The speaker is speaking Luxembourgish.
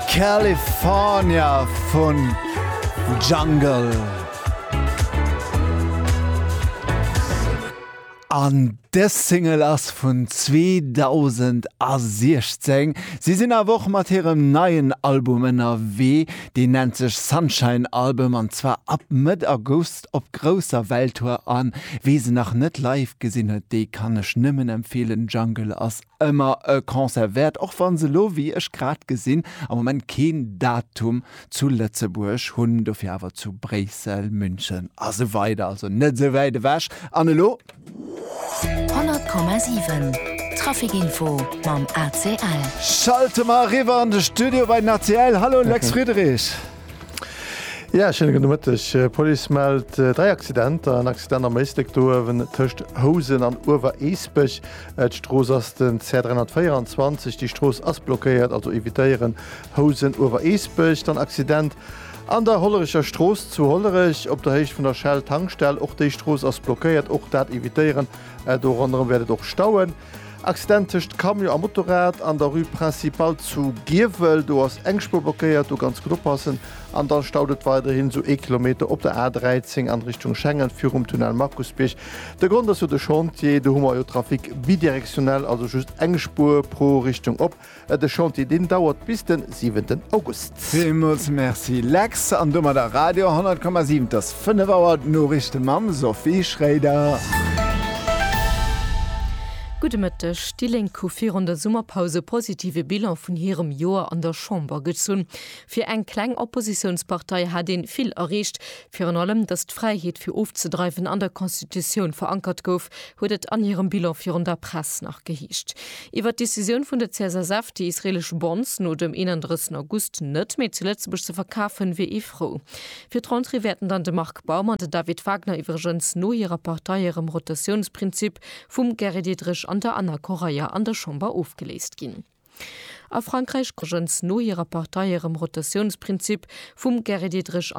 California vu Jungle. An dës Single ass vun 2016. Si sinn awer och mat hirem neien Album ënnerwee. Deen nennt sech Sunshine Album an zwar ab Mëtt August op grousser Welttour. A wee se nach net live gesinn huet, dee kann ech nëmmen empfeelen, Jungle ass Ëmmer e Concert wäert, och wa se elo, wéi ech grad gesinn, am Moment keen Datum zu Lëtzebuerg hunn, dofir awer zu Bréissel, München a sou weider, also net esou wäit ewech. An elo. 100,7 Traficinfo mam ACL. Schalte mer eriwwer an de Studio bei den ACL. Hallo Lex Friedrich. Jo, schéine gudde Mëtteg. D'Police mellt dräi Accidenter, en Accident am Éislek do uewen tëscht Housen an Uewer-Eesbech, D'Strooss ass den CR 324, déi Strooss ass blockéiert, also evitéieren Housen, Uewereesbech. Dann Accident an der Hollerecher Strooss zu Hollerech op der Héicht vun der Shell Tankstell, och déi Strooss ass blockéiert, och dat evitéieren, do ronderëm wäert et och stauen. Accident tëscht Camion a Motorrad an der Rue Principale zu Giewel, do ass eng Spuer blockéiert, do ganz gutt oppassen. An da staut et weiderhin esou ee Kilometer op der A 13 an Richtung Schengen virum Tunnel Markusbierg, De Grond ass jo de Chantier. Do hu mer jo Trafic bidirektionell, also just eng Spuer pro Richtung op. De Chantier, deen dauert bis den siwenten August. Villmools Merci Lex, an domadder Radio 10,7. Et ass 5 Auer, d'Noriichte mam Sophie Schréider. Gudde Mëtteg. Déi Lénk hu virun der Summerpaus e positive Bilan vun hirem Joer an der Chamber gezunn. Fir eng kleng Oppositiounspartei hat een vill erreecht. Virun allem, datt d'Fräiheet fir ofzedreiwen an der Constitutioun verankert gouf, huet et an hirem Bilan virun der Press nach geheescht. Iwwer d'Decisioun vun der CSSF, déi israelesch Bonds no dem 31 August net méi zu Lëtzebuerg ze verkafen, wier ee frou. Fir d'Rentrée wäerten dann de Marc Baum an den David Wagner iwwregens no hirer Partei erëm Rotatiounsprinzip vum Gary Diderich an der Ana Correia an der Chamber ofgeléist ginn. A Frankräich gëtt iwwregens no hirer Partei erëm Rotatiounsprinzip vum Gary Diderich an